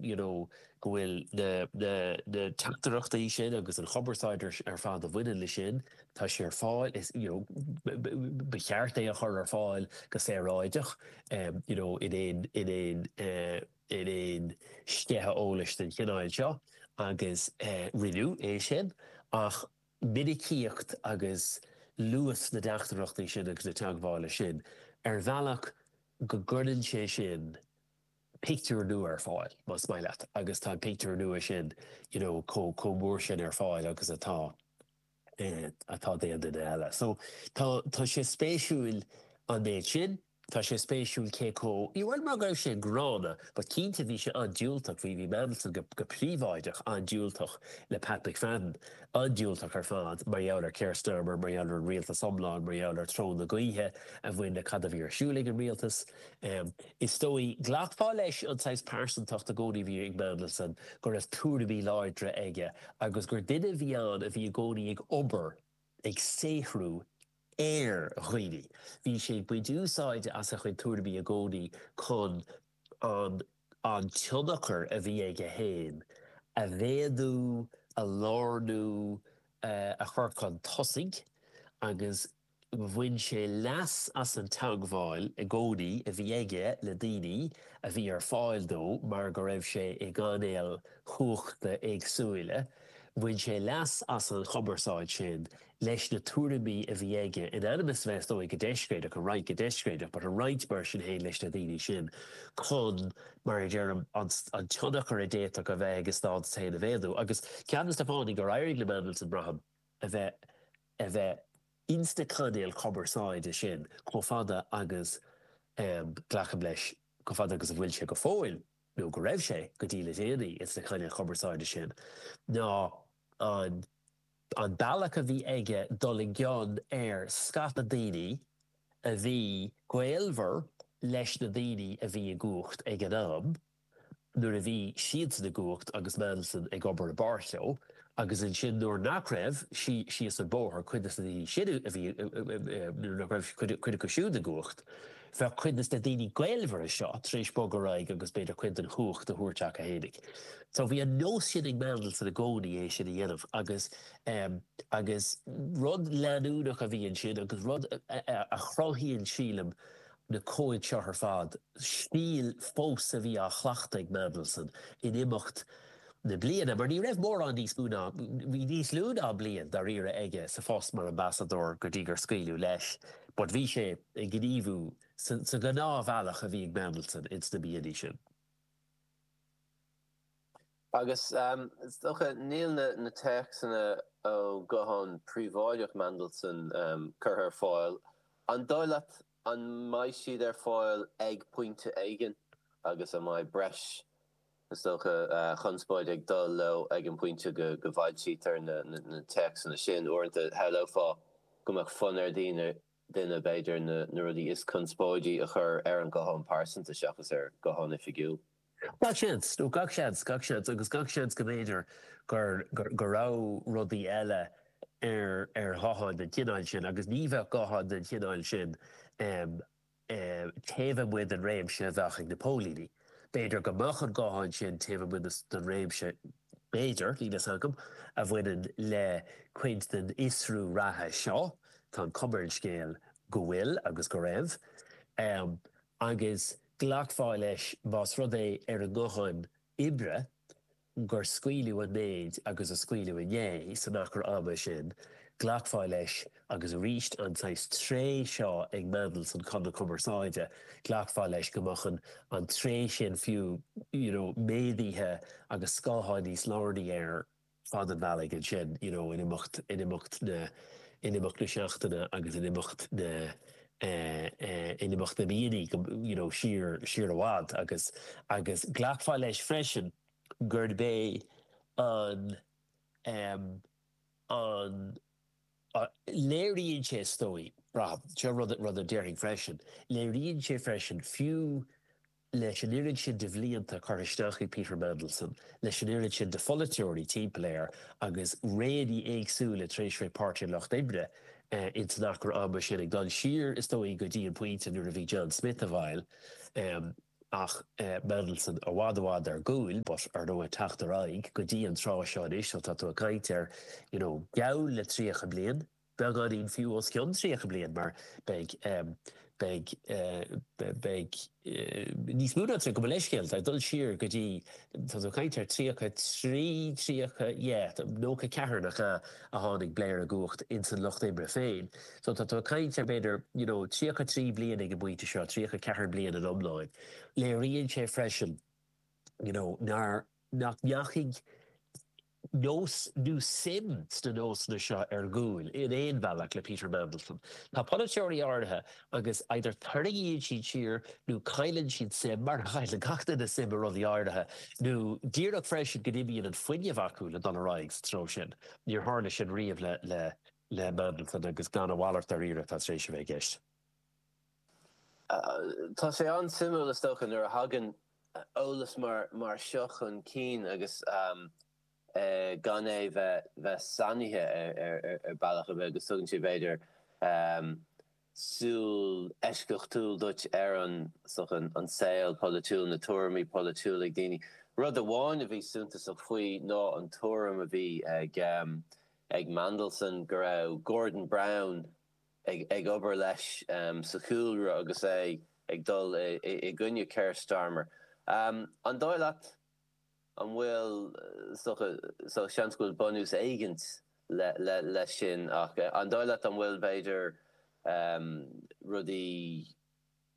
you know go bhfuil na teachtaireachtaí sin agus an chumarsáid ar fad a bhaineann leis sin, tá sé ar fáil, is you know ba cheart é a chur ar fáil go saoráideach you know in aon in aon in aon sceitheadh eolais den chineál seo agus rinneadh é sin ach minicíocht agus luas na dteachtaireachtaí sin agus na teagmhála sin ar bhealach go gcuireann sé sin pictiúr nua ar fáil, más maith leat, agus tá an pictiúr nua sin you know chomh chomh mór sin ar fáil agus atá atá d'aon duine eile. So tá tá sé spéisiúil an méid sin. Tá sé spéisiúil cé chomh you bhuel mar go raibh sé an-ghránna but cinnte bhí sé an-diúltach bhí bhí Mandelson go go príobháideach an-diúltach le Pat McFadden an-diúltach ar fad mar gheall ar Keir Starmer mar gheall ar an rialtas iomlán mar gheall ar treo na gaoithe a bhain le cad a bhí ar siúl ag an rialtas. Is dóigh, ghlacfá leis an saghas pearsantacht i gcónaí a bhí ag Mandelson, go raibh tuairimí láidre aige, agus gur duine a bhí ann a bhí i gcónaí ag obair, ag saothrú, ar dhaoine. Bhí sé ag baint úsáide as a chuid tuairimí i gcónaí chun an an tionchar a bhí aige féin a mhéadú, a lárnú, a chur chun tosaigh, agus. Bhain sé leas as an teagmháil i gcónaí a bhí aige le daoine a bhí ar fáil dó mar go raibh sé i gcainéil chumhachta éagsúla, bhain sé leas as an chumarsáid sin leis na tuairimí a bhí aige, in ainm is a bheith, is dóigh, go deiscréideach, a roinnt go deiscréideach, but a roinnt mar sin féin leis na daoine sin chun, mar a deirim, an tionchar a d'fhéadfadh a bheith aige féin a mhéadú. Agus ceann de na fáthanna gur éirigh le Mandelson braithim a bheith. a bheith insna cainéil chumarsáide sin chomh fada agus, glacaim leis, chomh fada agus a bhfuil sé go fóill, nó go raibh sé go dtí le déanaí insna cainéil chumarsáide sin, ná an an bealach a bhí aige dul i gcion ar scata daoine a bhí gaolmhar leis na daoine a bhí i gcumhacht ag an am. nuair a bhí siadsan i gcumhacht agus Mandelson ag obair i bpáirt leo, agus ansin nuair nach raibh, síos an bóthar, cuid dos na daoine sin a bhí, nuair nach raibh cuid acu siúd i gcumhacht, bheadh cuid dos na daoine gaolmhara seo tar éis bogadh ar aghaidh agus b'fhéidir cuid den chumhacht a thabhairt chucu fhéinig. So bhí an nós sin ag Mandelson i gcónaí é sin a dhéanamh agus, agus rud leanúnach a bhí ansin agus rud a chruthaíonn, sílim, na comhaid seo ar fad, stíl fós a bhí á chleachtadh ag Mandelson in imeacht na bliana, mar ní raibh mórán níos mó ná, bhí níos lú ná bliain dáiríre aige sa phost mar Ambasadóir go dtí gur scaoileadh leis, but bhí sé ag gníomhú sa ghnáthbhealach a bhí ag Mandelson ins na míonna sin. Agus is dócha, níl na téacsanna ó ghuthán príobháideach Mhandelson curtha ar fáil, an dóigh leat an mbeidh siad ar fáil ag pointe éigin agus an mbeidh breis, is dócha, conspóid ag dul leo ag an bpointe go bhfoilsítear na téacsanna sin? Uaireanta shamhlófá go mbeadh fonn ar dhaoine, duine, b'fhéidir, na rudaí is conspóidí a chur ar an nguthán pearsanta seachas ar ghuthán oifigiúil. Gach seans, nó gach seans, gach seans agus gach seans go mb'fhéidir go raibh rudaí eile ar ghutháin den chineál sin, agus ní bheadh gutháin den chineál sin taobh amuigh den réimse a bheadh ag na póilíní. B'fhéidir go mbeadh an guthán sin taobh amuigh den réimse, b'fhéidir, níl fhios agam, a bhaineann le cuid den fhiosrú reatha seo, tá an chuma ar an scéal go bhfuil agus go raibh, agus Ghlacfá leis más rud é ar an nguthán oibre gur scaoileadh an méid agus a scaoileadh inné san achar ama sin, ghlacfá leis, agus arís an saghas tréith seo ag Mandelson chun na cumarsáide, ghlacfá leis go mbeadh an tréith sin fiú, you know, méadaithe agus go háirithe níos lárnaí ar fad an bhealaigh ansin, you know in imeacht, in imeacht na, in imeacht na seachtaine agus in imeacht na eh, in imeacht na míonnaí go, you know siar, siar i bhfad agus, agus ghlacfá leis freisin gurb é an em an, léiríonn sé is dóigh, braithim, seo rud, rud a déarfainn freisin, léiríonn sé freisin fiú, leis an oiread sin de bhlianta curtha isteach ag Peter Mandelson, leis an oiread sin de pholaiteoirí timpeall air agus réanna éagsúla trasna Páirtí an Lucht Oibre ins an achar ama sin, ag dul siar, is dóigh, go dtí an pointe nuair a bhí John Smith i bhfeighil, ach Mandelson i bhfad i bhfad ar gcúl, but ar ndóigh ag teacht ar aghaidh go dtí an tráth seo anois, so tá tú ag caint ar, you know, geall le tríocha bliain. beagáinín fiú os cionn 30 bliain mar beidh beidh beidh níos mó ná 30 gabh mo leithscéal ag dul siar go dtí tá tú ag caint ar 33 30 yeah 94 nach ea a tháinig Blair i gcumhacht insan lucht oibre féin so tá tú ag caint ar b'fhéidir you know 33 bliain ag an bpointe seo 34 bliain in iomlán léiríonn sé freisin you know nár nach ndeachaigh nós nó suim sna nósanna seo ar gcúl, in aon bhealach, le Peter Mandelson. Tá polaiteoirí áirithe agus either tarraingíonn siad siar nó cailleann siad suim, mar a chailleann gach duine suim i rudaí áirithe, nó díreach freisin go n-imíonn an fuinneamh acu le dul ar aghaidh sa treo sin. Níor tharla sin riamh le Mandelson agus gan a mhalairt dáiríre atá tar éis a bheith i gceist. Tá sé an-suimiúil is dócha nuair a thagann eolas mar seo chun cinn agus gan é bheith bheith sainithe ar bealach ar bith agus tugann sé b'fhéidir súil eisceachtúil duit ar an saol polaitiúil, na tuairimí polaitiúla ag daoine. Rud amháin a bhí suntasach faoi ná an tuairim a bhí ag Mandelson go raibh Gordon Brown, ag obair leis sa chúlra agus é ag dul i gcoinne Keir Starmer. An dóigh leat an bhfuil, seans go bhfuil bunús éigin leis sin, ach an dóigh leat an bhfuil, b'fhéidir, rudaí,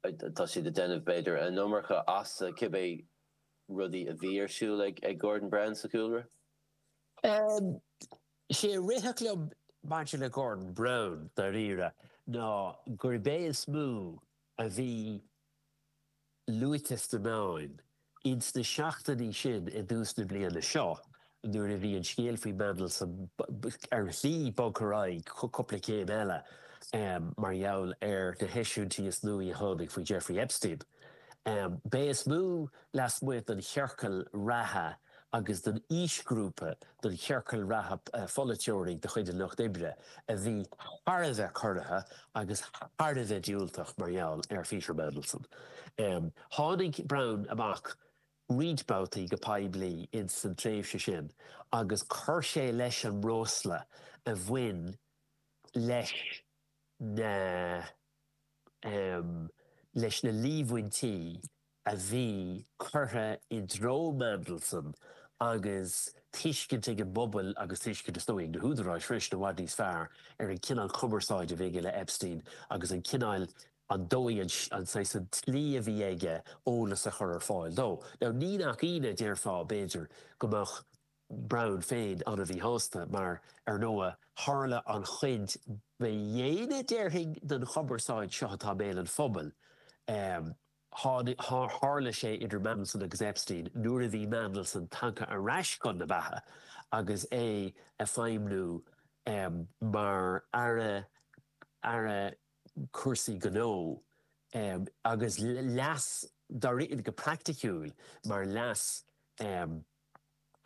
tá siad ag déanamh, b'fhéidir, an iomarca as cibé rudaí a bhí ar siúl ag Gordon Brown sa chúlra? Is é a rithfeadh liom maidir le Gordon Brown, dáiríre, ná gurbh é is mó a bhí luaite sna meáin ins na seachtainí sin i dtús na bliana seo nuair a bhí an scéal faoi Mandelson ar shlí bogtha ar aghaidh cupla céim eile mar gheall ar na heisiúintí is nuaí a tháinig faoi Jeffrey Epstein. Ba é is mó lasmuigh den chiorcal reatha a agus don aoisghrúpa, don chiorcal reatha pholaiteoirí de chuid an Lucht Oibre a bhí thar a bheith corraithe agus thar a bheith diúltach mar gheall ar Pheter Mandelson. Tháinig Brown amach roinnt babhtaí go poiblí ins san tréimhse sin agus chuir sé leis an mbreosla a bhain leis na, leis na líomhaintí, a bhí curtha i dtreo Mandelson agus tuiscint ag an bpobal agus tuiscint, is dóigh, ag na húdaráis freisin i bhfad níos fearr ar an gcineál cumarsáid a bhí aige le Epstein agus an cineál, an dóigh, an, an saghas, an tslí a bhí aige eolas a chur ar fáil dó. Now, ní nach ionadh, déarfá, b'fhéidir, go mbeadh Brown féin an-mhíshásta mar, ar ndóigh, tharla an chuid ba dhéine, déarfainn, den chumarsáid seo atá i mbéal an phobail, eh, Tharla sé idir Mandelson agus Epstein nuair a bhí Mandelson tagtha ar ais chun na beatha agus é ag feidhmniú mar aire aire cúrsaí gnó agus leas dáiríre go praiticiúil mar leas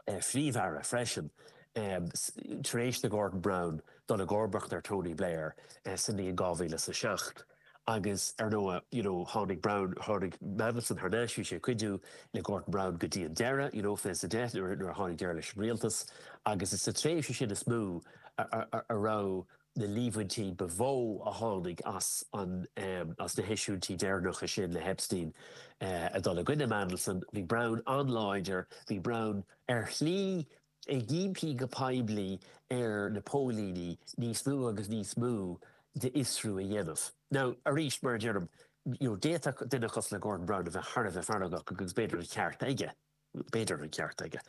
Phríomh-Aire freisin tar éis do Gordon Brown dul i gcomharbas ar Tony Blair sa mbliain 2007 agus ar ndóigh you know tháinig Brown, tháinig Mandelson thar n-ais, bhí sé ag cuidiú le Gordon Brown go dtí an deireadh you know 2010 nuair a tháinig deireadh leis an rialtas agus is sa tréimhse sin is mó a raibh na líomhaintí ba mhó a tháinig as na heisiúintí deireanacha sin le hEpstein a dhul i gcoinne Mandelson, bhí Brown an-láidir, bhí Brown ar shlí ag impí go poiblí ar na póilíní níos mó agus níos mó d'fhiosrú a dhéanamh. Now, arís, mar a deirim, d'fhéadfadh duine cosúil le Gordon Brown a bheith thar a bheith feargach agus b'fhéidir an ceart aige. B'fhéidir an ceart aige,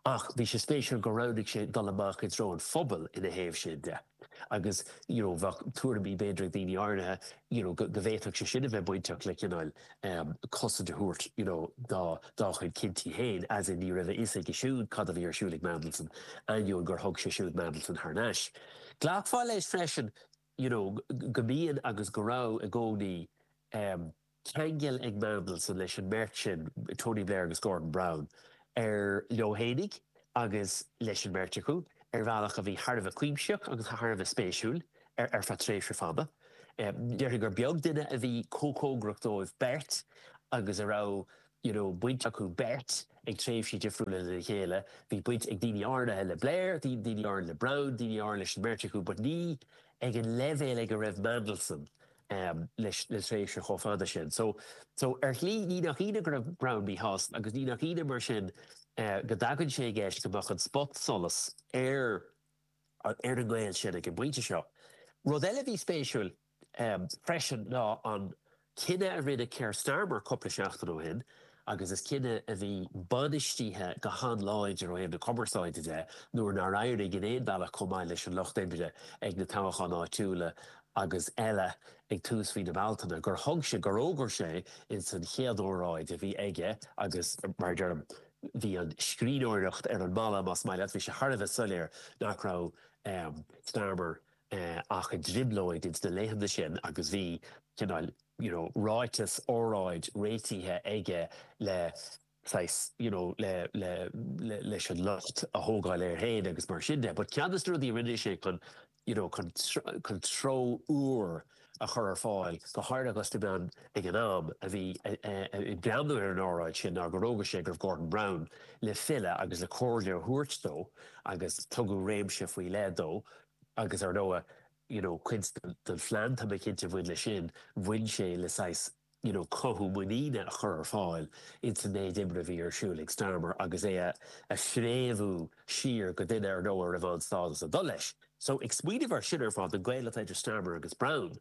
ach bhí sé spéisiúil gur roghnaigh sé dul amach i dtreo an phobail ina thaobh sin de, agus you know bheadh tuairimí b'fhéidir ag daoine áirithe you know go bhféadfadh sé sin a bheith bainteach le cineál cosaint a thabhairt you know dá chuid cinntí féin, as in ní raibh a fhios aige siúd cad a bhí ar siúl ag Mandelson, ainneoin gur thug sé siúd Mandelson thar n-ais. Glacfá leis freisin you know go mbíonn agus go raibh i gcónaí. ceangal ag Mandelson leis an mbeirt sin, Tony Blair agus Gordon Brown, ar leo fhéinig agus leis an mbeirt acu ar bhealach a bhí thar a bheith cuimsitheach agus thar a bheith spéisiúil ar feadh tréimhse fada. Déarfainn gur beag duine a bhí chomh cóngarach dóibh beirt agus a raibh you know baint acu beirt ag tréimhsí difriúla lena chéile. Bhí baint ag daoine áirithe le Blair, daoine áirithe le Brown, daoine áirithe leis an mbeirt acu but ní ag an leibhéal ag a raibh Mandelson. le tréimhse chomh fada sin. So, ar shlí, ní nach ionadh go raibh Brown míshásta, agus ní nach ionadh, mar sin, go dtagann sé i gceist go mbeadh an spot-solas ar an ngaol sin ag an bpointe seo. Rud eile a bhí spéisiúil, freisin, ná an cinneadh a rinne Keir Starmer cúpla seachtain ó shin, agus is cinneadh a bhí bainistithe go han-láidir ó thaobh na cumarsáide de nuair nár éirigh in aon bhealach chomh maith leis an Lucht Oibre ag na toghcháin áitiúla agus eile ag tús mhí na Bealtaine gur thug sé, gur fhógair sé ins an chéad óráid a bhí aige, agus mar a deirim, bhí an scríbhneoireacht ar an mballa, más maith leat, bhí sé thar a bheith soiléir nach raibh Starmer ach i dtrioblóid ins na laethanta sin agus bhí, cineál, you know, ráiteas, óráid, réitithe aige le, saghas, you know, le, le, le, leis an locht a thógáil air féin agus mar sin de. But ceann de na rudaí a rinne sé chun, you know, chun, chun treo úr a chur ar fáil, go háirithe dhos na meáin ag an am, a bhí ag breathnú ar an óráid sin ná gur fhógair sé go raibh Gordon Brown le filleadh agus le comhairle a thabhairt dó agus tugadh réimse faoi leith dó, Agus ar ndóigh, you know, cuid den phlean, tá mé cinnte, a bhain leis sin, bhain sé le saghas, you know, cothú muiníne a chur ar fáil ins an méid oibre a bhí ar siúl ag Starmer agus é a phréamhú siar go duine ar ndóigh a raibh an-stádas ag dul leis. So, ag smaoineamh air sin ar fad, an gaol atá idir Starmer agus Brown,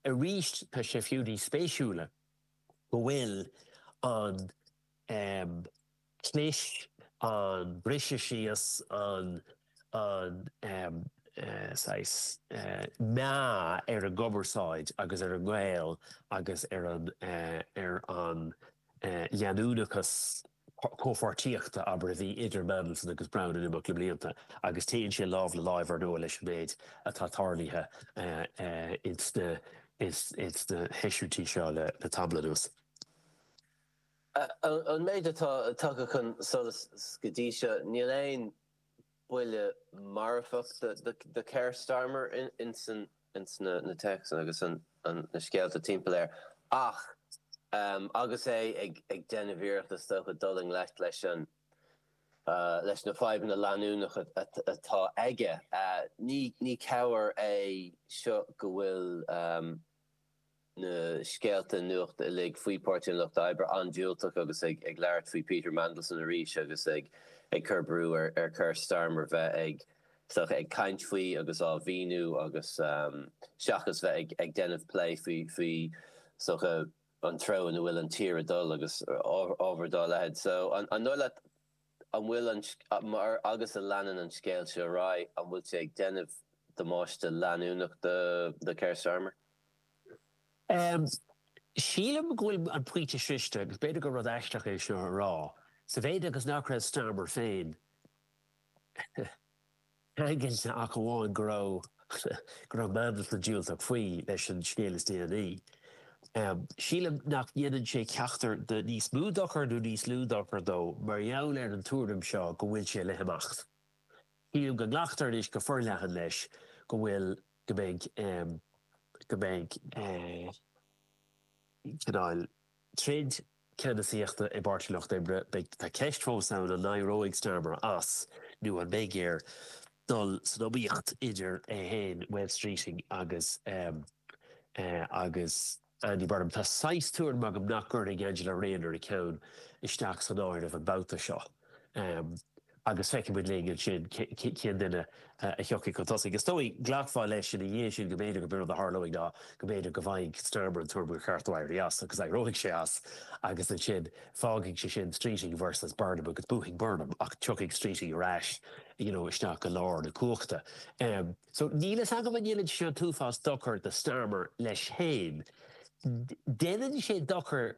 arís tá sé fiú níos spéisiúla go bhfuil an, em, leis an briseadh síos, an saghas meá ar an gcumarsáid agus ar an ngaol agus ar an leanúnachas comhpháirtíochta, abair, a bhí idir Mandelson agus Brown in imeacht na mblianta, agus téann sé lámh le láimh, ar ndóigh, leis an méid atá tarlaithe insna heisiúintí seo le tamall anuas. Ón méid atá tagtha chun solais go dtí seo, níl aon buille marfach do Keir Starmer insna, insna téacsanna agus na scéalta timpeall air ach, agus é ag déanamh iarracht is dócha dul i ngleic leis na fadhbanna leanúnacha atá aige, ní cabhair é seo go bhfuil. na scéalta nuachta uilig faoi Páirtí an Lucht Oibre an-diúltach agus ag labhairt faoi Peter Mandelson arís agus ag cur brú ar Keir Starmer bheith ag caint faoi agus á mhíniú agus seachas bheith ag déanamh plé faoi an treo ina bhfuil an tír ag dul agus ábhar dá leithéid. So an dóigh leat, an bhfuil an, mar, agus a leanann an scéal seo ar aghaidh, an bhfuil sé ag déanamh damáiste leanúnach do Keir Starmer? Em. sílim go bhfuil an pointe sroichte, agus b'fhéidir gur rud aisteach é seo a rá, sa mhéid agus nach raibh Starmer féin, ceangailte ach amháin go raibh go raibh Mandelson diúltach faoi leis an scéal is déanaí. Sílim nach ndéanann sé ceachtar de níos mó dochar nó níos lú dochar dó mar gheall ar an tuairim seo go bhfuil sé le himeacht. Sílim go nglactar anois go forleathan leis go bhfuil go mbeidh go mbeidh cineál. troid ceannasaíochta i bPáirtí Lucht Oibre, beidh, tá ceist fós ann an n-éireoidh Starmer as nó an mbeidh air dul san iomaíocht idir é féin, Wes Streeting agus agus Andy Burnham. Tá saghas tuairim agam nach gcuirfidh Angela Rayner a ceann isteach san áireamh an babhta seo. agus feicfidh muid linn as sin cén duine a thiocfaidh chun tosaigh. Is dóigh, glacfá leis ina dhiaidh sin go mb'fhéidir gurb in rud a tharlóidh ná go mb'fhéidir go bhfaighidh Starmer an tuairim gur cheart dó éirí as, agus éireoidh sé as, agus ansin fágfaidh sé sin Streeting versus Burnham, agus buafaidh Burnham, ach tiocfaidh Streeting ar ais, you know, isteach go lár na cumhachta. So, níl fhios agam an ndéanann sé seo an t-uafás dochair do Starmer leis féin. Déanann sé dochar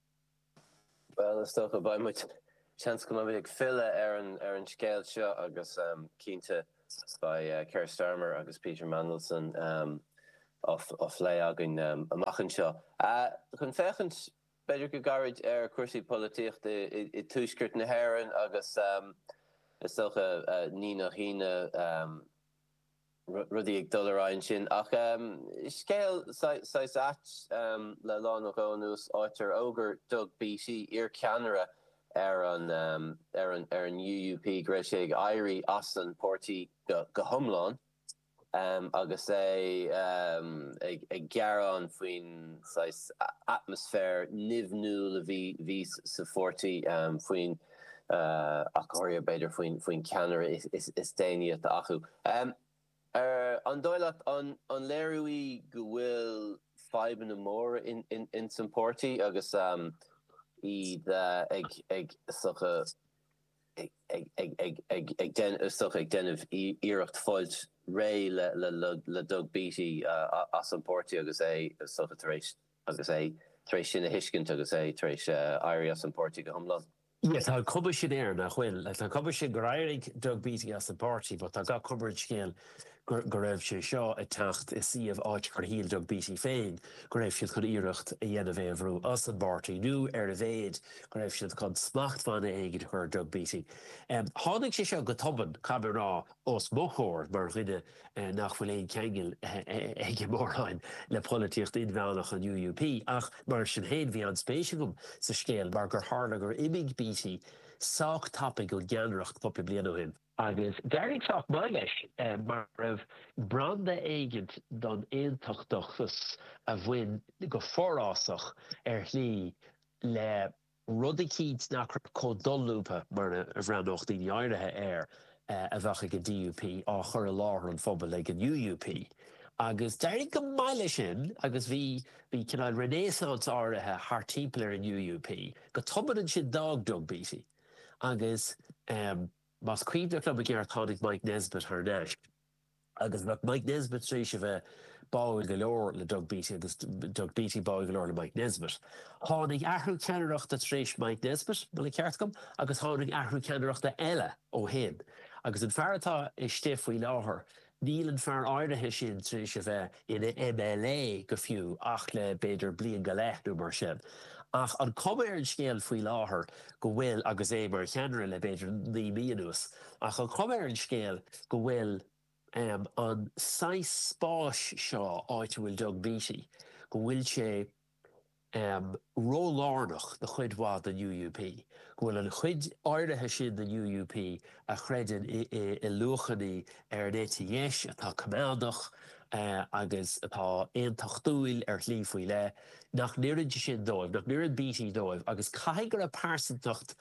Bhuel, is dócha, beidh muid, seans go mbeidh muid ag filleadh ar an ar an scéal seo agus cinnte beidh Keir Starmer agus Peter Mandelson á phlé againn amach anseo. Chun féachaint b'fhéidir go gairid ar chúrsaí polaitíochta i Tuaisceart na hÉireann agus is dócha ní nach ionadh, rudaí ag dul ar aghaidh ansin. Ach scéal saghas ait, le lá nó dhó anuas, áit ar fhógair Doug Beattie, iarcheannaire ar an UUP, go raibh sé ag éirí as an páirtí go hiomlán, agus é ag gearán faoin saghas atmaisféir nimhniúil a bhí sa pháirtí faoin. ach go háirithe b'fhéidir faoin ceannaire is déanaí atá acu. An dóigh leat, an léiriú í go bhfuil fadhbanna móra ins an páirtí agus iad ag, is dócha, is dócha ag déanamh iarracht fáilt réidh le Doug Beattie as an páirtí agus é, is dócha, tar éis Agus é tar éis sin a thuiscint, agus é tar éis éirí as an bpáirtí go hiomlán. Yeah, tá an cuma sin air nach bhfuil. Tá an cuma sin gur éirigh Doug Beattie as an bpáirtí, but tá gach cuma ar an scéal go raibh sé seo ag teacht i suíomh áit gur shíl Doug Beattie féin go raibh siad chun iarracht a dhéanamh é a bhrú as an bpáirtí, nó ar a mhéad go raibh siad chun smachtbhanna éigin a chur ar Doug Beattie. Tháinig sé seo go tobann, caithfidh mé a rá, os mo chomhair mar dhuine nach bhfuil aon cheangal aige móráin le polaitíocht inmheánach an UUP, ach mar sin féin bhí an-spéis agam sa scéal mar gur tharla gur imigh Beattie sách tapaidh ón gceannaireacht cúpla bliain ó shin. Agus d'éirigh sách maith leis, mar go raibh branda éigint don aontachtachas a bhain go forásach ar shlí le rud éigint nach raibh chomh dolúbtha mar a bhreathnódh daoine áirithe air a bheadh ag an DUP, á chur i láthair an phobail ag an UUP. Agus d'éirigh go maith leis sin, agus bhí, bhí cineál renaissance áirithe thart timpeall ar an UUP. Go tobann ansin d'fhág Doug Beattie, agus más cuimhneach liom i gceart tháinig Mike Nesbitt thar n-ais. agus bheadh Mike Nesbitt tar éis a bheith báúil go leor le Doug Beattie agus Doug Beattie báúil go leor le Mike Nesbitt. Tháinig athrú ceannaireachta tar éis Mike Nesbitt, más ceart dom, agus tháinig athrú ceannaireachta eile ó shin, agus an fear atá istigh faoi láthair, níl an fear áirithe sin tar éis a bheith. ina MLA go fiú ach le b'fhéidir bliain go leith nó mar sin. Ach tá an chuma ar an scéal faoi láthair go bhfuil, agus é mar cheannaire le b'fhéidir naoi mí anuas, tá an chuma ar an scéal go bhfuil an saghas spáis seo, áit a bhfuil Doug Beattie, go bhfuil sé. ró-lárnach do chuid mhaith den UUP, go bhfuil an chuid áirithe sin den UUP a chreideann i luachanna ar an eite dheis atá coimeádach agus atá aontachtúil ar shlí faoi leith, nach n-oireann sé sin dóibh, nach n-oireann Beattie dóibh. Agus caithfidh go raibh pearsantacht,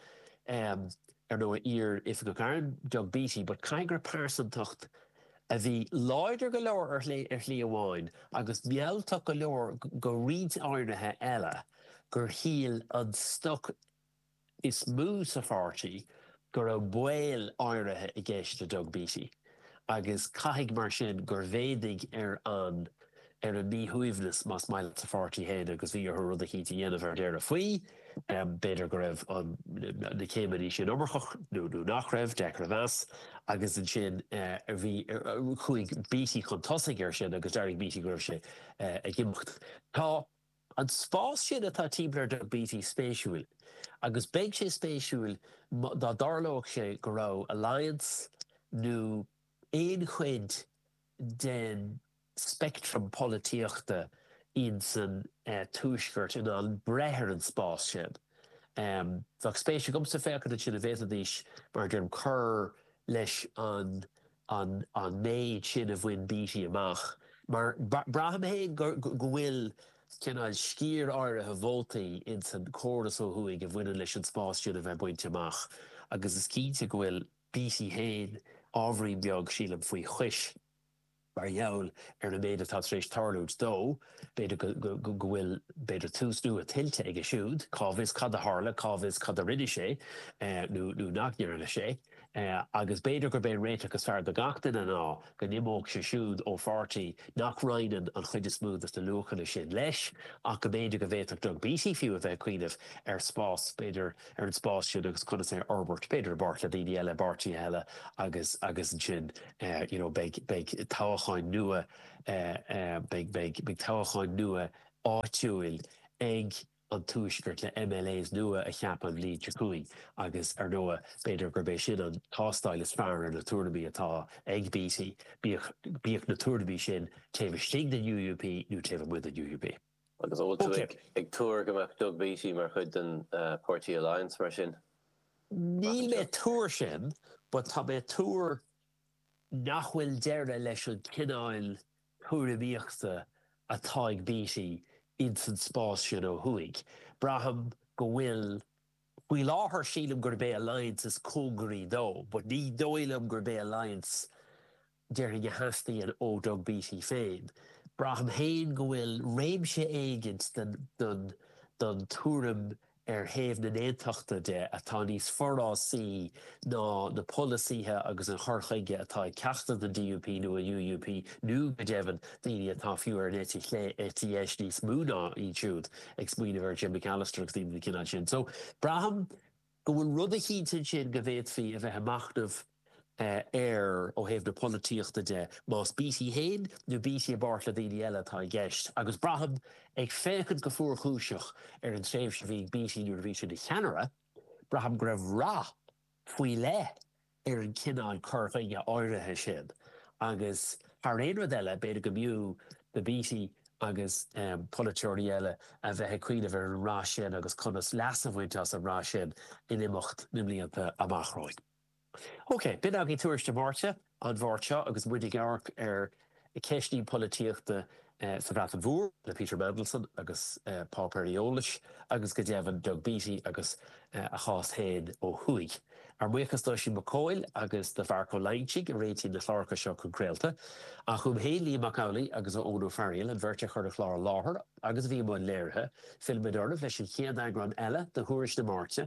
ar ndóigh, iar-Oifigeach Airm, Doug Beattie, but caithfidh go raibh pearsantacht a bhí láidir go leor ar shlí, ar shlí amháin, agus mealltach go leor go pointe áirithe eile, gur shíl an stoc is mó sa pháirtí go raibh baol áirithe i gceist le Doug Beattie, agus caithfidh, mar sin, gur mhéadaigh ar an. ar an míshuaimhneas, más maith leat, sa pháirtí féin agus bhí orthu rud eicínt a dhéanamh ar deireadh faoi. B'fhéidir go raibh na céimeanna sin iomarcach nó nach raibh, deacair a meas. Agus ansin bhí, chuaigh Beattie chun tosaigh air sin agus d'fhógair Beattie go raibh sé ag imeacht. Tá an spás sin atá timpeall ar Doug Beattie spéisiúil agus beidh sé spéisiúil dá dtarlódh sé go raibh Alliance nó aon chuid den, speictream polaitíochta in san tuaisceart in ann breith ar an spás sin. Bheadh spéis agamsa féachaint ansin an bhféadfaidís, mar a deirim, cur leis an an méid sin a bhain Beattie amach, mar braithim féin go bhfuil cineál sciar áirithe vótaí in san córas ó thuaidh a bhaineann leis an spás sin a bheith bainte amach, agus is cinnte go bhfuil Beattie féin ábhairín beag, sílim, faoi chois. Mar gheall ar an méid atá tar éis tarlúint dó, b'fhéidir go bhfuil, b'fhéidir, tús nua tuillte aige siúd. Cá bhfios cad a tharla, cá bhfios cad a rinne sé nó nach ndearna sé. Agus b'fhéidir gurb é an réiteach is fearr do gach duine ná go n-imeodh sé siúd ó pháirtí nach roinneann an chuid is mó de na luachanna sin leis, ach go mb'fhéidir go bhféadfadh Doug Beattie fiú a bheith ag cuimhneamh ar spás, b'fhéidir, ar an spás sin agus conas é a fhorbairt, b'fhéidir i bpáirt le daoine eile, i bpáirtithe eile agus ansin. you know beidh beidh toghacháin nua beidh beidh beidh toghacháin nua áitiúil ag an tuaisceart le MLAs nua a cheapadh an bhliain seo chugainn agus ar ndóigh b'fhéidir gurb é sin an tástáil is fearr ar na tuairimí atá ag Beattie bíodh bíodh na tuairimí sin taobh istigh den UUP nó taobh amuigh den UUP. Agus an bhfuil tú ag tuar go mbeadh Doug Beattie mar chuid den Páirtí Alliance mar sin? Níl mé ag tuar sin, but tá mé ag tuar nach bhfuil deireadh leis an cineáil tuairimíochta atá ag Beattie ins an spás sin ó thuaidh. Braithim go bhfuil, faoi láthair sílim gurb é Alliance is cóngaraí dó, but ní dóigh liom gurb é Alliance go díreach a theastaíonn ó Doug Beattie féin, Braithim féin go bhfuil réimse éigin den den tuairim ar thaobh na n-aontachta de atá níos forásaí ná na polasaithe agus an cur chuige atá ag ceachtar den DUP nó an UUP nó, go deimhin, daoine atá fiú ar an eite chlé, eite dheis níos mó ná iad siúd, ag smaoineamh ar Jim Allister agus daoine den chineál sin. So, braithim. go bhfuil rud eicínt ansin go bhféadfaí a bheith ag machnamh air ó thaobh na polaitíochta de, más Beattie fhéin nó Beattie i bpáirt le daoine eile atá i gceist, agus braithim, ag féachaint go fuarchúiseach ar an tréimhse a bhí ag Beattie nuair a bhí sé ina cheannaire, braithim go raibh rath faoi leith ar an chineál cur chuige áirithe sin agus thar aon rud eile b'fhéidir go mb'fhiú do Beattie agus polaiteoirí eile a bheith ag cuimhneamh ar an rath sin agus conas leas a bhaint as an rath sin in imeacht na mblianta amach romhainn. OK, b'in againn tuairisc na Máirte, an Mháirt seo agus muid ag amharc ar ceisteanna polaitíochta sa Bhreatain Mhór le Peter Mandelson agus páipéir eolais, agus go deimhin Doug Beattie agus a chás féin ó thuaidh. Ár mbuíochas d'Oisín Mac Cóil agus do Mharc Ó Loingsigh a réitigh na cláracha seo chun craolta, ach uaim féin, Liam Mac Amhlaigh agus Eoin Ó Fearghaíl, an bheirt a chuir an clár i láthair agus a bhí i mbun léirithe. Fillfimid oraibh leis an chéad eagrán eile de Thuairisc na Máirte